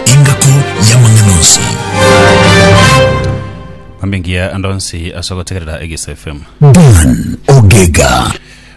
Engako y'amang'ana onsi. Mambingia ande onsi ase ogotegerera Egesa FM. Dan Ogega.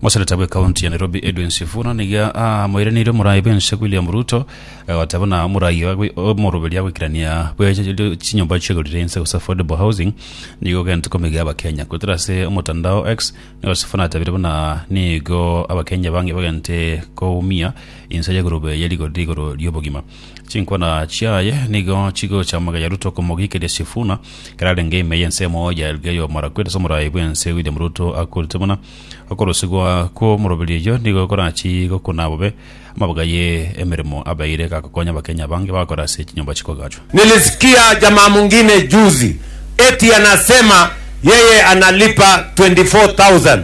Moseneta bwe kaunti ya Nairobi Edwin Sifuna niga amoiraneire omorai bwense William Ruto agoteba buna omorai oye omoroberia goikerania bwe chinyomba chiegorire inse gose affordable housing nigo ogente komiga abakenya gotera ase omotandao X nigo Sifuna atabire buna nigo abakenya bange bagente koumia inse y'egorobe eyerigorire igoro ri'obogima Chinkwana chiaye nigo chigocha amagayaru tokomogikeria Sifuna, kararenge ime y'ensemo ya Elgeyo Marakwet ase omorai bw'ense William Ruto akorete buna. Okorosigwa kw'omoroberi oyio nigo korachi gokuna bobe amabuga ye emeremo abeire gakokonya Abakenya abange bagakora ase chinyomba chikogachwa. Nilisikia jamaa mwingine juzi eti anasema yeye analipa 24,000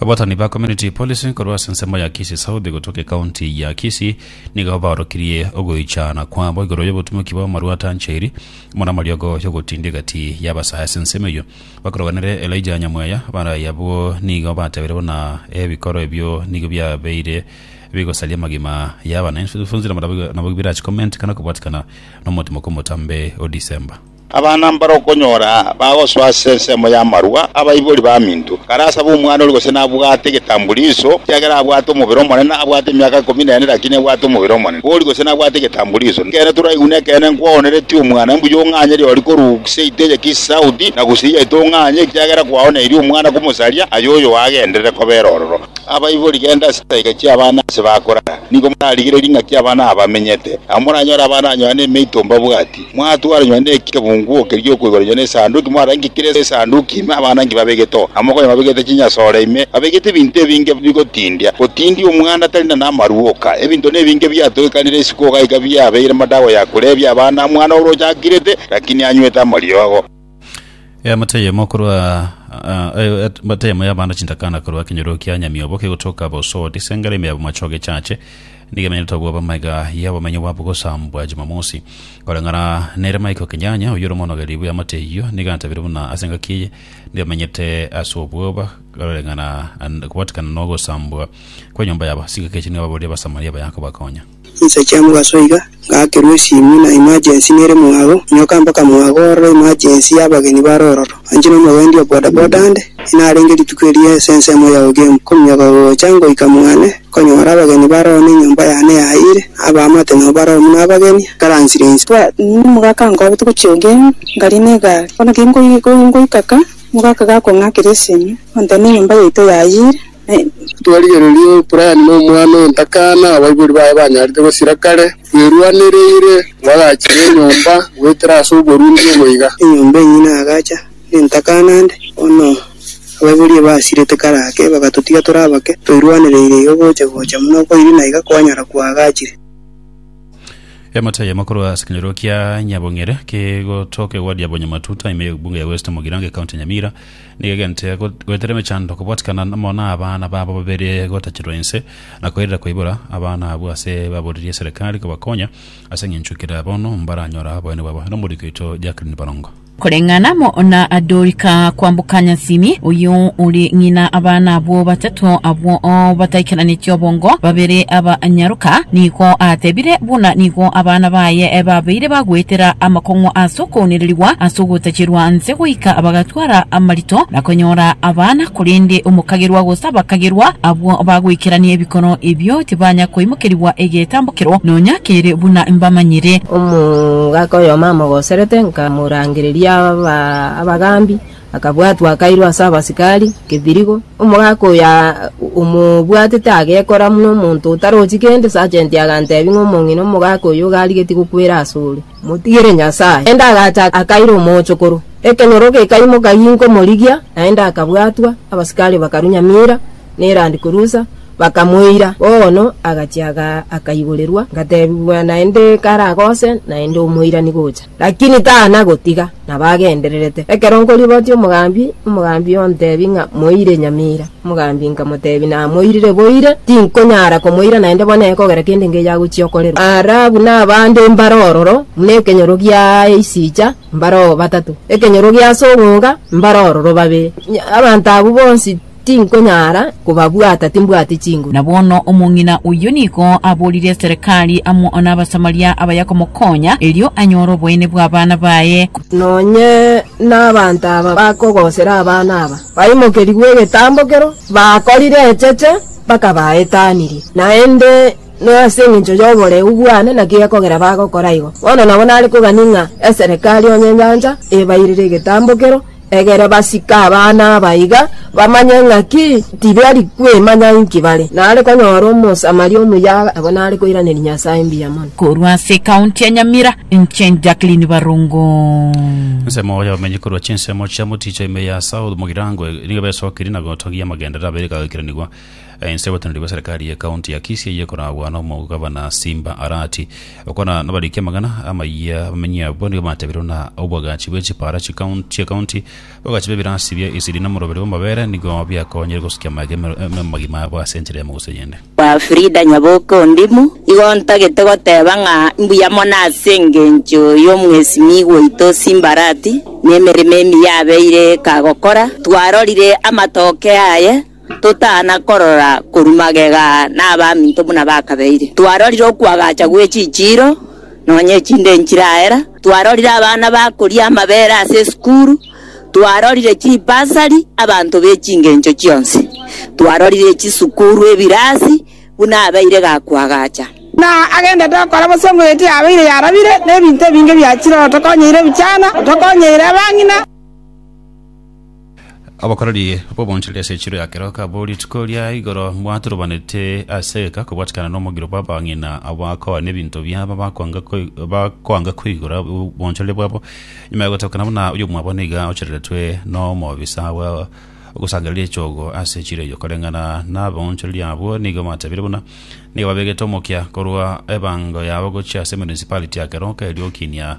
Abatani ba Community Policy korwa ase ensemo ya Kisii South gotoka ekaunti ya Kisii nigo baorokirie ogoichana kwabo igoro y'obotumoki bw'amarwa atanchairi amo namariogo y'ogotinda egati y'abasae ase ensemo eyio. Bakoroganere Elijah Nyamweya barai abwo nigo batebire buna ebikoro ebio nigo biabeire bigosaria amagima y'abana. Infuncina nabo birachi comment kana kobwatikana nomotimoko omotambe o December. Abana mbare okonyora bagosoa ase ensemo y'amarua, abaibori baminto. Karasabe omwana oria gose nabwate egetambuliso, ekiagera abwate omobere omonene, abwate emiaka ikomi nene lakini ebwate omobere omonene. Bori gose nabwate egetambuliso. Nekeene toraigune ekeene nkwoonereti omwana, mbuya ong'anye rirorio korwa seat eye ki south na gose eyi yaito ong'anye, ekiagera kwaoneirie omwana komosaria, aye oyo agenderere kobera ororo. Abaibori genda ase chisaika chi'abana ase bakorara. Nigo morarigererie ng'aki abana aba bamenyete. Nabo moranyore abana anyoha nemeito mbabwati. Mwatwaranywa nekebunguo keria giokoiboranywa na Esanduki, mwarenge kera Esanduki ime abanangi babegete oo, amo konya babegete chinyasore ime babegete ebinto ebinge bigotindia, gotindia omwana atari na namaruoka. Ebinto nebinge biatogekanire isiko iga iga biabeire madawa ya korebia abana, mwana oroche akirete, lakini anywete amariogo. Eamate eyemo korwa ah, eh, eamate eyemo y'abande chintakana korwa ekenyoro kia nyamiobo kegotoka bosodi ase engare ime ya bomacho gechache nigo emenyete obwoba amaiga y'obomenyo bwabo gosambwa Jumamosi koreng'ana nere Michael Kenyanya oyio ore omonogeri bw'eamate eyio nigo antabire buna ase engaki eye nigo emenyete ase obwoba koreng'ana an- kobatikana n'ogosambwa kw'enyomba yabo ase engaki echi nigo ababoria Abasamaria baya kobakonya Inse chiamogaso iga, ngaakerwa esimu na emergency nere mwago, nyoka mpaka mwago ororo emergency y'abageni bare ororo. Anche nomogendi o bodaboda ande, inarenge rituko erio ase ensemo ya Ogemu, kominyoka gocha ngoika mwane, nkonyora abageni bare oo na enyomba yane yaayire, abaamate nao bare oo buna abageni, nkaransire inse. Bwanini mogaka ankoa botuko chia Ogemu, ngarie n'egaari. Bono ki ngoika ka, mogaka gakong'akera esimu, ontebia na enyomba yaito yaayire. Twarigereria Brian na omwana o ntakana abaibori baye banyarete gosira kare. Bwerwanereire bagachiria enyomba goetera ase oborundi obo iga. Enyomba enyia na agacha na entakana nde. Bono abaibori basirete kare ake bagatotiga tore abake. Toirwanereire iga gocha gocha buna okoiri na iga kwanyara kwagachire. Emate eyemo korwa ase ekenyoro kia Nyabong'ere kegotoka egwadi ya Bonyamatuta, ime ye ebunge ya West Mugirango, ekaunti ya Nyamira. Nigo egento egoetera emechando kobwatikana amo nabana babo babere gotachirwa inse na koirera koibora abana abwo ase baboririe eserekari kobakonya ase engencho kera bono mbaranyora oboyene bwabo nomoriki oito Jacqueline Borongo. Koreng'ana amo na Dorika kwamboka Nyasimi, oyio ore ng'ina abana abwo batato abwo bataikeranetie obongo, babere aba nyaroka, nigo atebire buna nigo abana baye babeire bagoetera amakong'o ase okounererigwa ase ogotachirwa nse goika bagatwa Kwara amarito na konyora abana, korende omokagerwa gose abakagerwa abwo bagoikerania ebikoro ebio tibanya koimokerigwa egetambokero nonya kere buna mbamanyire. Omogaka oyomo amogoserete, nkamorangereria abagambi, akabwatwa akairwa ase abasikari kebirigo. Omogaka oyo omobwatete agekora buna omonto otarochi kende, sajenti agantebi ng'a omong'ina omogaka oyo iga arigetie gokwera asore. Motigere Nyasae. Naende agacha akaira omochokoro. Ekenyoro gekaimoka ginkomorigia, naende akabwatwa, abasikari bakarunya mira nerandi korusa, bakamoira. Bono agachia akaiborerwa, ngatebigwa naende kare agose naende omoirani gocha. Lakini tana gotiga. na bagendererete. Ekero nkoribotia omogambi, omogambi ontebi ng'a moire nyamira. Omogambi nkamotebi namoirire boire, tinkonyara komoira naende bono ekogera kende ngeya agochia okorerwa. Ara abwo nabande mbare ororo buna ekenyoro gia eisicha mbare oo batato, ekenyoro gi'ase ogonga mbare ororo babere. Abanto abwo bonsi Tinkonyara kobabwata, timbwati chinguru. Na bono omong'ina oyio nigo aborire Serikali amo n'Abasamaria abaya komokonya, erio anyore oboyene bw'abana baye. Nonye nabaanto aba bakogosera abana aba, baimokerigwe egetambo kero bakorire echeche bakabaetanirie, naende nase engencho y'oboreu bwane naki gekogera bagokora igo. Bono nabo nare kogani ng'a Eserikali onye enyancha ebairire egetambo kero, Egere basike abana aba iga, bamanye ng'a ki tibari kwemanya inki bare. Nare konyora Omosamaria omuya abwo nare koiraneria Nyasae mbuya mono. Korwa ase ekaunti ya Nyamira, inche Jacqueline Barongo. Ensemo ya abamenyi korwa chinsemo chia moticho ime ya South Mugirango nigo besokirie na gotogia amagenderero abere agagoikeranigwa. Ense y'oboteneneri bwa serikali ye kaunti ya Kisii eyio ekoragwa n'omogabana Simba Arati okwana nabariki amang'ana amayia abamenyi abwo nigo batebirwe na obwagachi bwe chipara chi'ekaunti obwagachi bw'ebirasi bia esiri nomoroberi bw'amabere nigo biakonyire gosukia amaega amagima abo ase enchera y'amausi eyende. Kwa Frida Nyaboke Ondimu, igo ntagete goteba ng'a mbuya mono ase engencho y'omwesimigwa oito Simba Arati, nemeremo emiya abeire kagokora. Twarorire amatookeo aye. totana korora korwa magega nabaminto buna bakabeire. Twarorire okwagacha gwe chichiiro, nonya echinde enchiraera, twarorire abana bakoria amabere ase esukuru, twarorire chibasari abanto be chingencho chionsi, twarorire chisukuru ebirasi buna abeire gakwagacha. Na agendete okora bosio ng'o eti yabeire yarabire, na ebinto ebinge biachire otokonyeire ebichana, otokonyeire abang'ina. Obokoreri bw'oboonchoreri ase echiro ya kero kabwo rituko ria igoro bwaturubanete ase eka kobwatikana n'omogiro bw'abang'ina abakoa n'ebinto biabo bakwanga koi- bakwanga koigora oboonchoreri bwabo nyuma ya gotookana buna oyomwabo niga ochereretwe n'omobisa bwa ogosangereria echogo ase echiro eyo koreng'ana n'aboonchoreri abwo nigo batebiire buna nigo babegete omokia korwa ebango yabo gochia ase municipality ya keroka erio okinia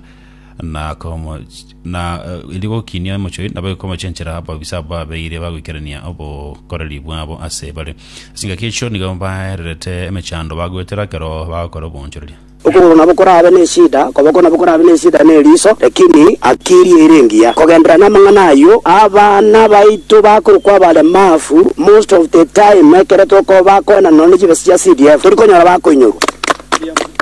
na komo na erio gokinia omochoi, nabo ekomochenchera ababisa abwo babeire bagoikerania obokoreri bwabo ase bare. Ase engaki y'enkio nigo baererete emechando bagoetera ekero bagokora obonchoreria. Okogoro nabo korabe nesida, okoboko nabo korabe nesida ne eriso, lakini haki eria ere engiya. Kogenderera namang'ana ayio, abana baito bakorokwa abaremafu, most of the time ekero tokobakoena nonya ne chibesa chia CDF, torikonyora bakoinyorwa.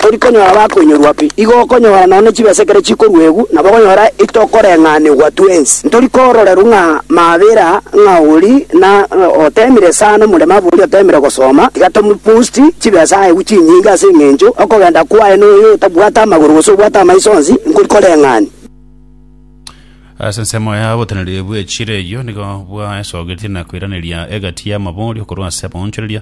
Tori konyora bakoinyorwa pi, igo okonyora nonye chibesa ekero chikoruegwa, nabo okonyora itokoreng'anigwa twensi. Ntori kororerwa ng'a mabera ng'a ori na otemire sana nomoremo aba oria otemire gosoma, tiga tomopost chibesa aegwe chinyinge ase eng'encho okogenda kwaye noyo otabwate amagoro gose obwate amaiso onsi, nkori koreng'ani. Ase ensemo ya oboteneneri bw'echire eyio nigo bwaesogetie na koiraneria egati y'amabori okorwa ase abaonchoreria,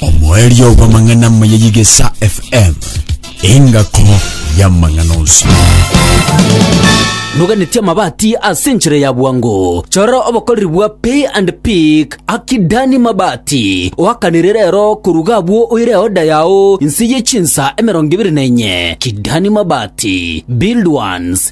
Omoerio bw'amang'ana amaya y'Igesa FM, engako y'amang'ana onsi. noganetie amabati ase enchera ya bwango chora obokoreri bwa pay and pick akidani mabati oakanire rero koruga abwo oire oda yao nse ye chinsa emerongo ibere na enye kidani mabati build ones